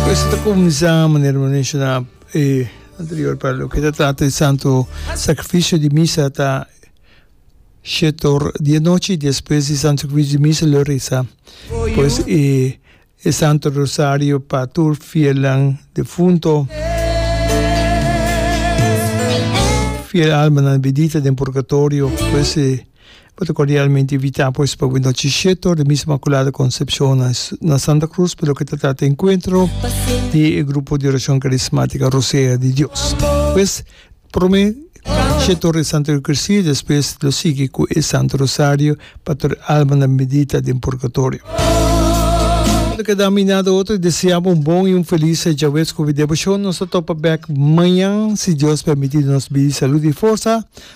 Pues ta cuminsa manera me menciona e anterior para lo que ta trata el santo sacrificio di misa ta shetor di e nochi despues di santo sacrificio di misa lo reza pues e e santo rosario pa tur fielnan defunto fiel almanan bendita den purgatorio pues e Bo ta cordialmente invita pues pa bo nochi shetor di Misa Inmaculada Concepcion na Santa Cruz pa loke ta trata encuentro di e grupo di oracion carismatica Rosea di Dios. Pues prome shetor di Santa Eucaristia y despues lo sigui cu e Santo Rosario pa tur e almanan bendita den purgatorio. Bo ta keda mina di otro y deseabo un bon y un feliz Djawees cu Devoshon. Nos ta topa bek mañan si Dios permiti nos bidi salud y forsa.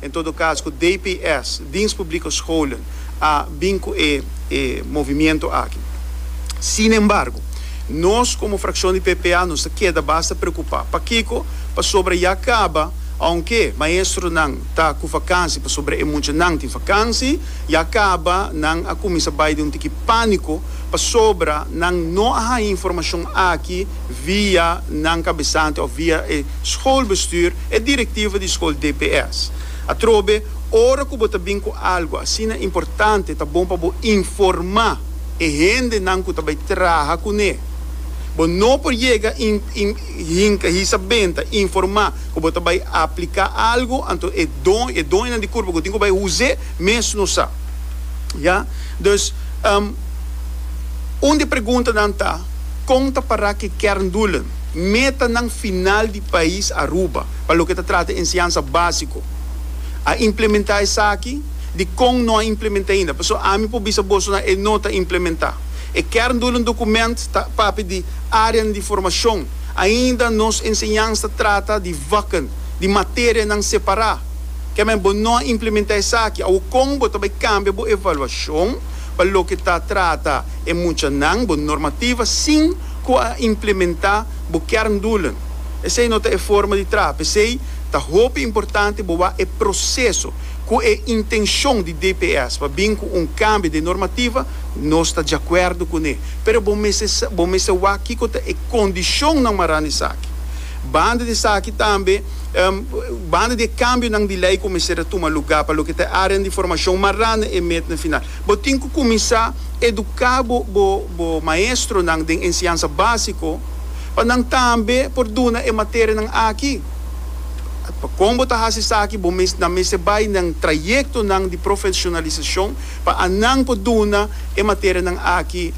En todo cas cu DPS, Dienst Publieke Scholen, a bin cu e e movimiento aki. Sin embargo, nos como fraccion di PPA nos ta keda basta preocupa. Pakico? Pasobra ya caba, aunke maestronan ta cu vakansi pasobra e muchanan tin vakansi, ya caba nan a cuminsa bay den un tiki panico pasobra nan no a haya informacion aki via nan cabesante of via e schoolbestuur. E directiva di school DPS. Atrobe, ora cu bo ta bin cu algo asina importante ta bon pa bo informa e hendenan cu ta bay traha cune. Bo no por yega hinca hisa benta informa cu bo ta bay aplica algo anto e doñonan di curpa cu tin cu bay huze mes no sa. Ya. Dus, un di preguntanan ta, con ta para cu e kerndoelen, metanan final, Pais Aruba, pa loke ta trata enseñansa básiko, a implementá esaki di kon no a implementá ainda. P'esei ami por bisa boso nan e no ta implementá. E kerndoelen dokument ta papia di áreanan di formashon. Ainda nos enseñansa ta trata di vakken, di materianan separá. Ke men bo no a implementá esaki. Awor kon bo ta bai kambia bo evaluashon pa loke ta trata e muchanan, bo normativa, sin ku a implementá? bo kerndoelen. Esei no ta e forma di traha. P'esei ta hopi importante bo wak e proseso ku e intenshon di DPS pa bin ku un kambio den normativa, nos ta djakuerdo kuné. Pero bo mester sa, bo mester wak kiko ta e kondishonnan maran esaki. Banda di esaki tambe, banda di e kambionan di lei ku mester a tuma lugá pa loke ta e árean di formashon maran na e metnan final, Bo tin ku kuminsá eduká bo bo bo maestronan den enseñansa básiko pa nan tambe por duna e materianan aki. Pa kon bo ta hasi esaki bo mes nan mester bai nan trayektonan di profeshonalisashon pa anan por duna e materianan aki.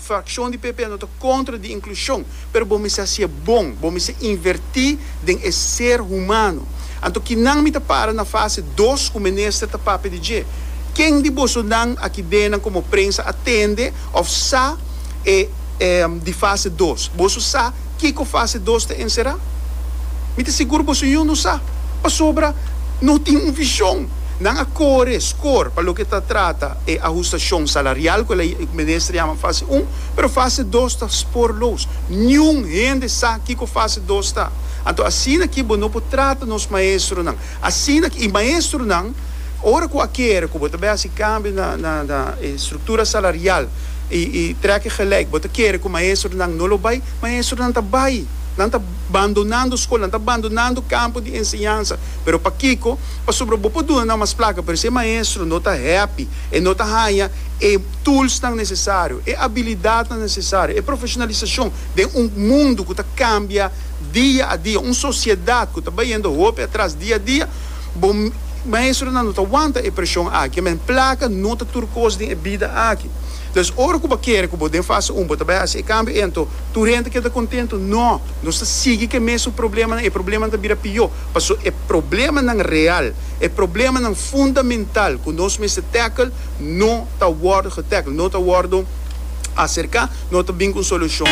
Frakshon di PP no ta kontra di inklushon, pero bo mester hasié bon, bo mester invertí den e ser humano. Anto kinan mi ta para na fase dos ku Minister ta papia di dje? Ken di bosonan akidenan komo prensa a tende òf sa e di fase dos? Boso sa? Kiko fase dos ta enserá? Mi ta sigur boso yun lo sa, pasobra no tin un vishon. Nan a kore skor pa loke ta trata e ahustashon salarial, ku el a minister yama fase un, pero fase dos ta sporloos. Niun hende sa kiko fase dos ta. Anto asina ki bo no por trata nos maestronan Asina ke e maestronan, ora ku a kere ku bo ta bai hasi kambio na na na e struktura salarial i i trèk gelijk, bo ta kere ku maestronan no lo bai, maestronan ta bai. Nan ta bandonando skol, nan ta bandonando kampo di enseñansa. Pero pakiko? Pasobra bo por duna nan mas plaka, pero si e maestro no ta hèpi, e no ta haña e tulsnan nesesario, e abilidatnan nesesario, e profeshonalisashon den un mundu ku ta kambia dia a dia, un sosiedat ku ta bayendo hopi atras dia a dia, bo maestronan no ta wanta e preshon aki, men plaka no ta tur kos den e bida aki. Entonces, ora ku bo kere ku bo den fase un bo ta bai hasi e kambio ei, anto tur hende keda kontentu? No, nos ta sigui ku e mesun problemanan, e problemanan ta bira pió, pasobra e problemanan real, e problemanan fundamental ku nos mester tackle no ta wòrdu getackle, no ta wòrdu aserká, no ta bin ku un solushon.